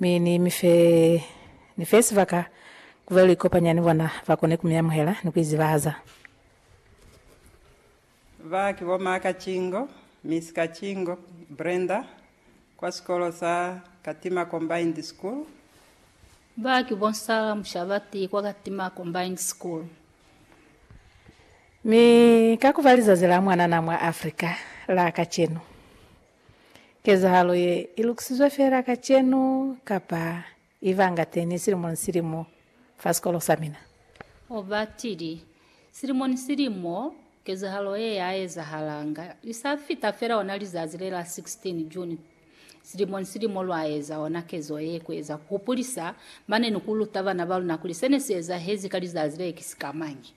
Mi ni mi fe, ni fe sibaka ku be lu ikopanya ni bona, ba kone ku mi amuhela ni ku izibahaza. Ba ki bo Maa Kacingo, Miss Kacingo, Brenda, kwa sikolo sa Katima Combined School. Ba ki bo Nsala Mushabati kwa Katima Combined School. Mi ka ku ba lizazi la mwanana mwa Africa la kacenu, Kezahalo ye i lukisizwe feela kacenu kapa i banga teñi silimo ni silimo fa sikolo sa mina? O batili. Silimo ni silimo, kezahalo ye ya ezahalanga. Li sa fita feela ona lizazi le la 16 June, silimo ni silimo lwa eza ona kezo ye ku eza ku hupulisa mane ni ku luta bana ba luna kuli se ne si ezahezi ka lizazi le ki sikamañi.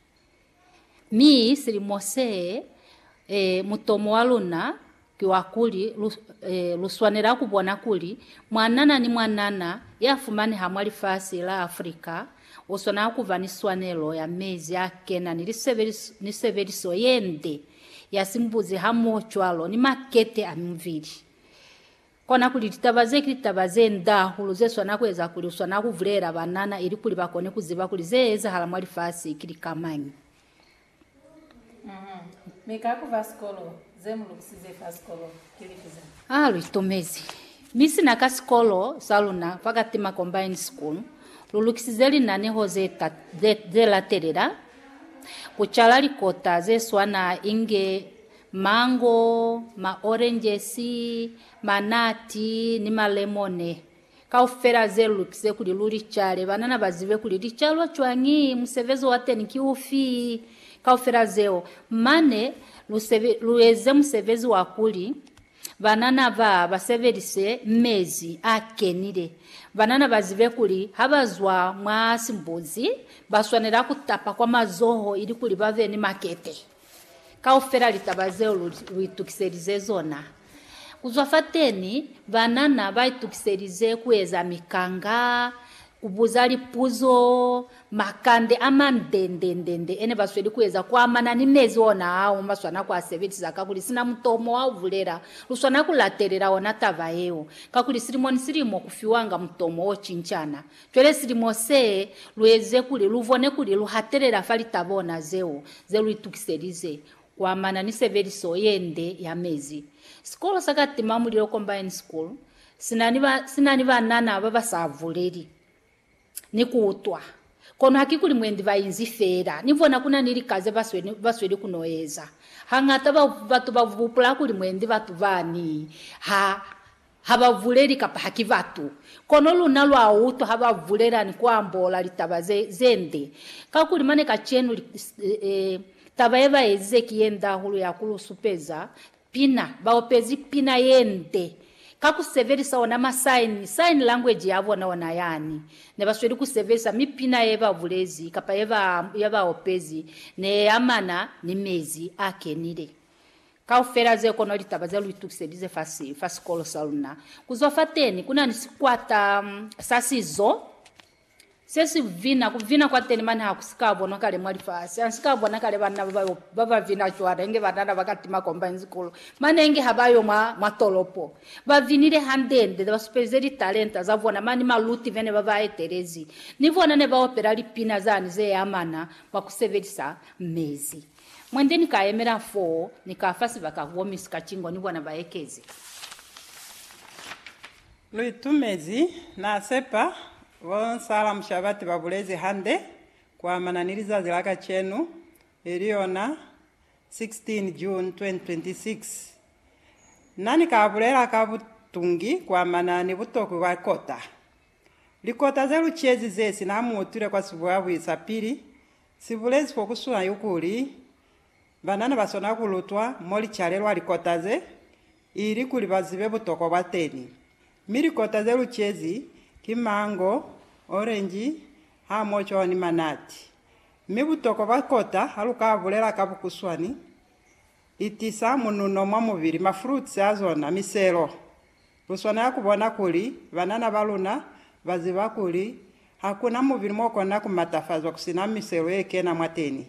Mi silimo see, e, mutomo wa luna ki wa kuli lu, e, lu swanela ku bona kuli mwanana ni mwanana ya fumaneha mwa lifasi la Afrika u swanela ku ba ni swanelo ya mezi a kena ni lisebeliso, ni sebeliso ye nde ya simbuzi hamoho cwalo ni makete a mibili. Kona kuli litaba ze ki litaba ze nda hahulu ze swana kueza kuli uswana kubulelela banana ilikuli bakone kuziba kuli ze ezahala mwa lifasi ki lika mañi. Mi ka ku fa sikolo, ze mu lukusize fa sikolo ki lifi ze? A lu itomezi. Mi sina ka sikolo sa luna fa Katima Combined School, lu lukisize linaneho ze ze latelela, Ku cala likota ze swana inge Mango, maorenjesi, manati, ni malemone. Kaufela ze lu lukize kuli lu li cale. Banana ba zibe kuli li calwa cwañi, musebezi wa teni ki ufi, kaufela zeo. Mane lu sebe, lu eze musebezi wa kuli banana ba, ba sebelise mezi a kenile. Banana ba zibe kuli ha ba zwa mwa simbuzi, ba swanela ku tapa kwa mazoho ilikuli ba be ni makete. Kaufela litaba zeo lu, lu itukiselize zona. Ku zwa fateni, banana ba itukiselize ku eza mikanga, ku buza lipuzo, makande a mandendendende ene ba sweli ku eza ku amana ni mezi ona ao mo ba swana ku a sebelisa, kakuli sina mutomo wa ku bulela, lu swana ku latelela ona taba yeo, kakuli silimo ni silimo ku fiwanga mutomo o cincana. Cwale silimo se lu eze kuli lu bone kuli lu hatelela fa lita bona zeo ze lu itukiselize kuamana ni sebeliso ye nde ya mezi. Sikolo sa Katima Mulilo Combined School si na ni ba, si na ni banana ba ba sa buleli ni ku utwa. Kono hakikuli mwendi ba inzi feela. Ni bona ku na ni lika ze ba sweli, ba sweli ku n'o eza. Hañata ba, batu ba bupula kuli mwendi batu bani ha Ha ba buleli kapa ha ki batu. Kono luna lwa utwa ha ba bulela ni ku ambola litaba ze, ze nde. Kakuli mane kacenu, e, taba ye ba ezize ki ye nde hahulu ya ku lu supeza pina. Ba opezi pina ye nde, ka ku sebelisa ona masaini, sign language ya bona ona yani ne ba sweli ku sebelisa, mi pina ye ba bulezi kapa ye ba, ye ba opezi ne ye amana ni mezi a kenile. Kaufela ze kono litaba ze lu itukiselize fa, fa sikolo sa luna. Ku zwa fateni, ku na ni sikwata sa sizo se si vina. Ku vina kwa teni mane ha ku si ka bonwa kale mwa lifasi. Ha si ka bona kale banna ba ba, ba ba vina cwale, inge banana ba ka tima combine sikolo mane inge ha ba yo mwa, mwa tolopo. Ba vinile hande-nde, ne ba supelize litalenta za bona mane. Maluti bene ba ba etelezi ni bona ne ba opela lipina zani ze amana mwa ku sebelisa mezi. Mwende ni ka yemela foo, ni ka fa sibaka ku bo Miss Kachingo ni bona ba ekeze. Lu itumezi, na sepa, bo Nsala Mushabati ba bulezi hande ku amana ni lizazi la kacenu, ili yona 16 June 2026. Na ni ka bulela ka butungi ku amana ni butokwi bwa kota. Likota ze lu cezi ze si na mu utwile kwa sibuyabuyi sa pili, Si bulezi fo ku suna yo kuli, banana ba swanela ku lutwa mo li calelwa likota ze, ili kuli ba zibe butokwa bwa teni. Mi likota ze lucezi ki mango, orenji, hamoho cwalo ni manati. Mi butokwa bwa kota ha lu ka bulela ka bukuswani, Li tisa mununo mwa mubili, mafruits a zona, miselo. Lu swanela ku bona kuli banana ba luna ba ziba kuli ha ku na mubili m'o kona ku matafazwa ku si na miselo ye kena mwateni.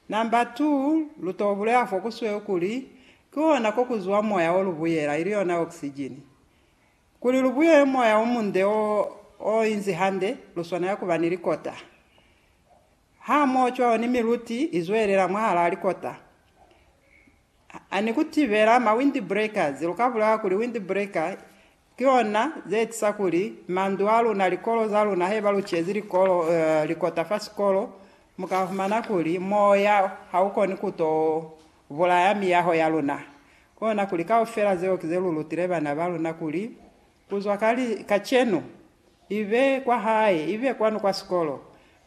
Number 2, lu t'o bulela fo ku sweu kuli ki hona ko ku zwa moya o lu buyela, ili yona oxygen. Kuli lu buyele moya o munde o o inzi hande, lu swanela ku ba ni likota. Ha mo cwalo ni miluti i zwelela mwahalaa likota. Ha ni ku tibela ma windbreakers, lu ka bulela kuli windbreaker ki lona ze etiza kuli mandu a luna, likolo za luna, haiba lu cezi likolo, likota fa sikolo, mu ka humana kuli moya ha u koni ku to bulaya miyaho ya luna. Ki lona kuli kaufela zeo ki ze lu lutile bana ba luna kuli, kuzwa ka, kacenu, Ibe kwa hae, ibe kwanu kwa sikolo,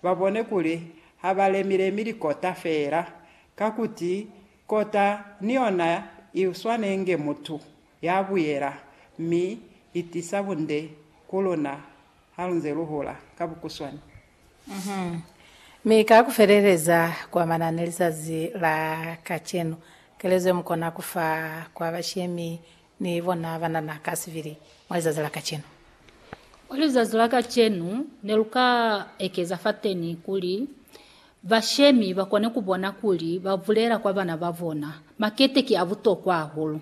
ba bone kuli ha ba lemi-lemi likota feela, ka kuti kota ni yona i swana inge mutu ya buyela, mi i tisa bunde ku luna ha lu nze lu hula ka bukuswani. Mi ka ku feleleza kwa manani lizazi la kacenu, kelezo ye mu kona ku fa kwa bashemi Ni bona banana ka sibili mwa lizazi la kacenu. Mwa lizazi la kacenu, ne lu ka ekeza fateni kuli bashemi ba kone ku bona kuli ba bulela kwa bana ba bona makete ki a butokwa hahulu.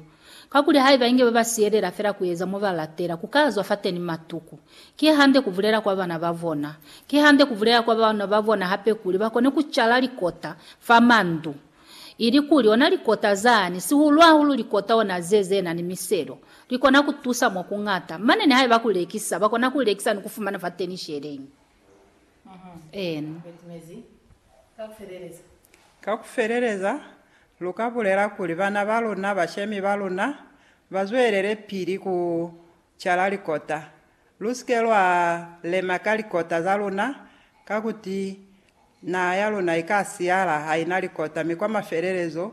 Kakuli haiba inge ba ba siyelela fela ku eza mo ba latela, ku ka zwa fateni matuku. Ki hande ku bulela kwa bana ba bona. Ki hande ku bulela kwa bana ba bona hape kuli ba kone ku cala likota fa mandu Ilikuli ona likota zani, sihulu-hahulu likota ona ze zenani miselo, likona kutusa mwa kuñata, mane nihaiba kulekisa, bakona kulekisa ni kufumana fateni sheleñi. Ena. Ka kufeleleza, luka bulela kuli bana baluna, bashemi baluna, bazwelele pili ku cala likota. Lusike lwa lema ka likota zaluna, kakuti Naha ya luna i ka siyala ha i na likota, mi kwa mafelelezo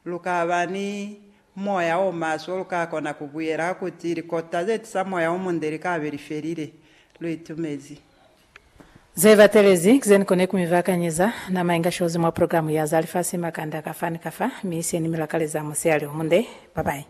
lu ka ba ni moya o maswe. Lu ka kona ku buyela ka ku ti, Likota ze tisa moya o munde li ka be li felile. Lu itumezi. Ze batelezi ki ze ni koni ku mi bakanyeza. Nama inga shozi mwa programu ya za lifasi makanda kafa ni kafa, mi se ni mi lakaleza musiyale o munde. Bye bye.